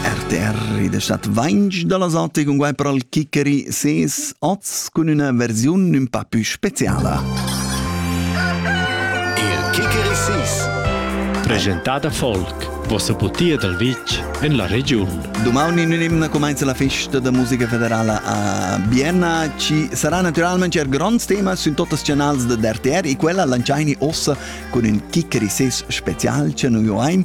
RTR ed stat vainch da las otte con guai per al kickeri ses oz cun üna versiun ün pa pü speziala. Il kickeri sis Presentada Folk vossa butia dal vitg en la regiun. Domani in un'imna comincia la festa da musica federala a Vienna. Ci sarà naturalmente un grande tema su tutti i canali di RTR e quella lanciaini ossa con un Kickeri 6 special che noi oim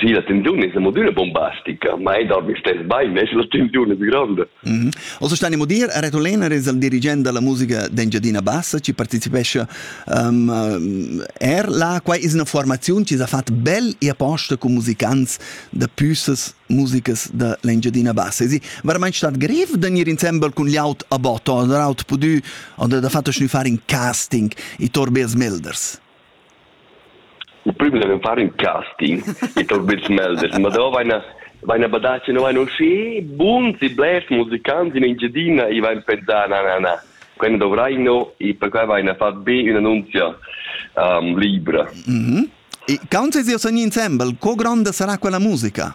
Sì, la tensiun es amodüna bombastica, ma ei dat stess bain, es la tensiun es gronda. Mm -hmm. Also Stani Mudir a Retolena es il dirigent da la musica d'Engiadina Bassa chi partecipescha um, er là. Quai es üna formaziun chi s'ha fat bel e aposta cun musicants da püssas musicas da l'Engiadina Bassa. E veramente stat grev da gnir insembel cun l'aut a botto, da aut pudü, o da, da fatto schnü far in casting, i Torbers Milders. Il prüm devan far ün casting e tot bels melders, ma davo vaina vaina badà chi nu vain uschè buns e blers musicants in Engiadina e vain pensà na na na, quai nu dovraino e perquai vaina fat be ün'annunzia libra. E quant es eir sogni insembel, co gronda sarà quella musica?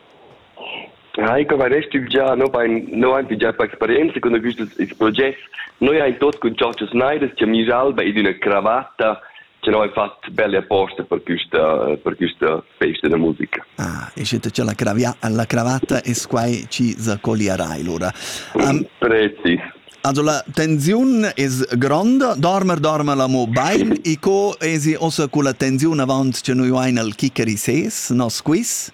Ja, ich habe recht im Jahr noch ein noch ein Jahr Experienza con quests progetti. Noi haben tot con Giorgio Snyder che mi salva in una cravatta che noi fatto belle apposta per questa per questa festa da musica. Ah, e siete c'è la, cravia, la cravatta e squai ci zacolierai lura. Um, Prezi. Also la tensiun es gronda, dormer dormer la mo bain e co esi ossa con la tensiun avant che noi uain al kickeri ses, nos quiz?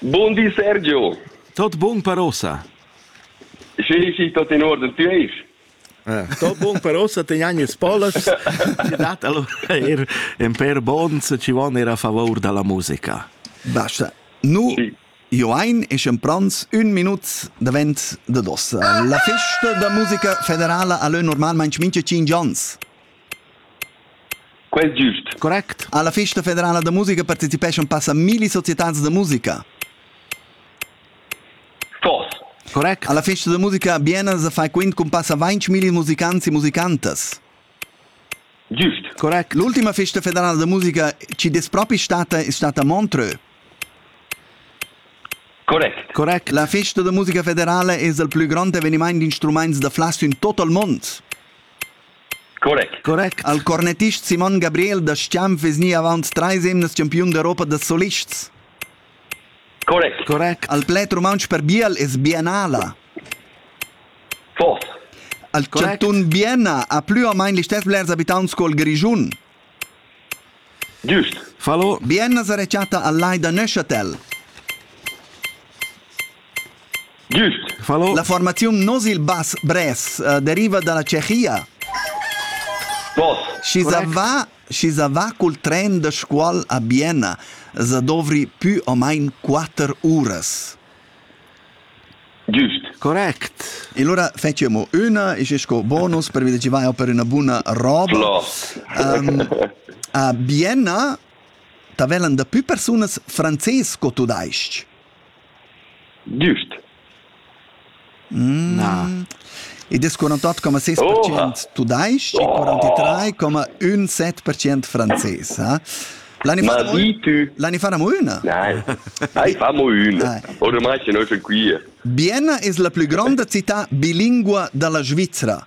Bun di Sergio. Tot bun per ossa. Sì, sì, tot in ordine. Ti eis? Eh, tot bun per ossa, te gnagnes polas. Ti dat allo er en per bons ci von era a favor dalla musica. Basta. Nu sì. Joain e Schemprans un minut davent da dossa. La festa da musica federala a lö normalmente mincha 5 ans. Quel è giust. Correct. Alla festa federala da musica partecipeschan passa milli societads da musica. Tos. Correct. Alla festa da musica biena sa fai quint cun passa 20 milli musicants e musicantas. Giust. Correct. L'ultima festa federala da musica ci des propi stata è stata a Montreux. Correct. Correct. La festa da musica federale è il più grande avvenimento di strumenti da flasso in tutto il mondo. Correct. Correct. Al cornettist Simon Gabriel da Schianf vezni avant trais emnas champiun d'Europa da solists. Correct. Correct. Al pled rumantsch per biel es biennala. Force. Al Correct. chantun Bienna ha plü o main listess blers abitants col Grischun. Giust. Fallo. Bien as ha rechatta al lai da Neuchâtel. Giust. Fallo. La formaziun Nosil Bas Bres uh, deriva dalla Tschechia. Pos. Schi va, schi va cul tren da scuol a Bienna, za dovri pü o mein quatter uras. Giust. Correct. E allora fettiamo mo üna e sco bonus per vedere chi vai per una buona roba. Floss. Um, a Bienna tavellan da più personas frances co tu daisch. Giust. Na. Id es 48,6% tudais-ch e 43,17% frances, ha? L'anni Ma di tu! L'anni faremo üna? Nein. Nein, famo üna. Ormai che noi sun qui. Bienna es la plü gronda città bilingua da la Svizra.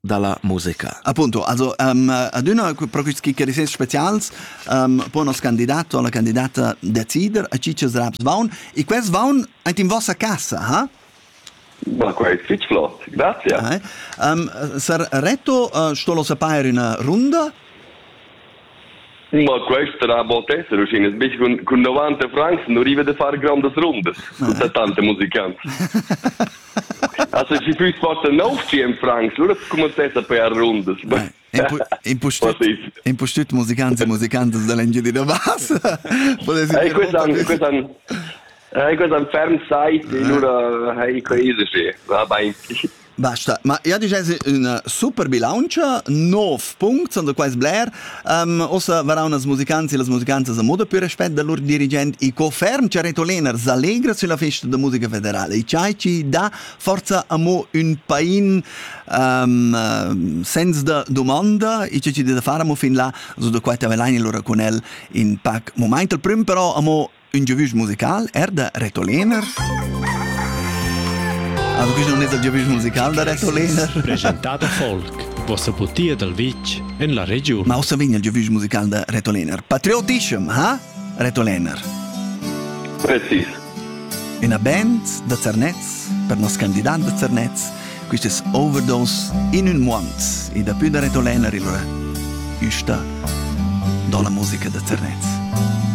dalla musica. Appunto, also um, adüna pro quists chiarisins specials um, po nos candidato o la candidata decider a chi chi's raps vaun e quels vaun aint in vossa casa, ha? Ma quai è fitg flott, grazie. Eh? Um, sar Reto, uh, sto lo sapair üna runda? Ma quest rabot esser uschina sbech cun, cun 90 francs nu riva da far grandas rundas cun tante musicants. Also si füss forta 900 francs, lura scumanzessa per rundas. Impustüt impustüt musicants e musicantas da l'Engiadina Bassa. Ei quest'an quest'an Ei quest'an ferm site e lura hai quei se. Va bain. Basta, ma ja disch es üna super bilauntscha, nov punct sun da quaist bler. Um, uossa varan els musicants e las musicantas a moda pür respet da lur dirigent e co ferm cha Retoliner s'allegra sülla festa da musica federala e chai chi dà forza amo ün pain um, uh, senza domanda e che chi da far amo fin là, so da quai t'avelain lura con el in pac momaint. Il prüm però amo Ün giavüsch musical er da Reto Lehner. Also questo non è il giavüsch musical da Reto Lehner. Presentato Folk, vostra butia dal vitg en la regiun. Ma ossa vegna il giavüsch musical da Reto Lehner. Patriotischem, ha? Reto Lehner. Precis. Una band da Zernez, per nos candidat da Zernez, questo è Overdose in un month. E da più da Reto Lehner il sta do la musica da Zernez.